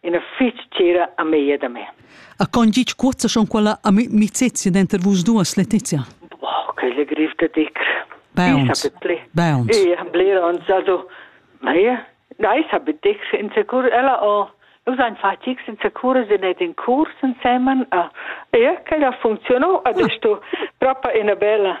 ina fitg tgira amiga da me. A con gitg cuozza schon quella a mi mi zezia denter vus duas, Letizia? Oh, che le griff da dic. Bounce. Bounce. Ja, bler uns also. Mei, nein, habe dic in secur ella o Nus ein fatgs in secure se net in curs insemen a e che la funzionò adesso proprio una bella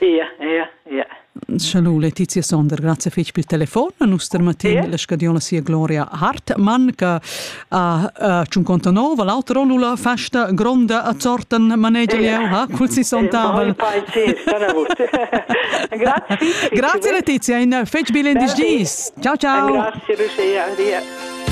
Ia, ia, ia. Schalu Letizia Sonder, grazie fetg pel telefon. Nus termatin yeah. la scadiola sia gloria Hartmann, che ha uh, 59, l'altra rollula festa gronda a Zorten manegia yeah. ha, col 60. grazie. grazie Letizia, in fetch bilen dis. Ciao ciao. Grazie Lucia, an dia.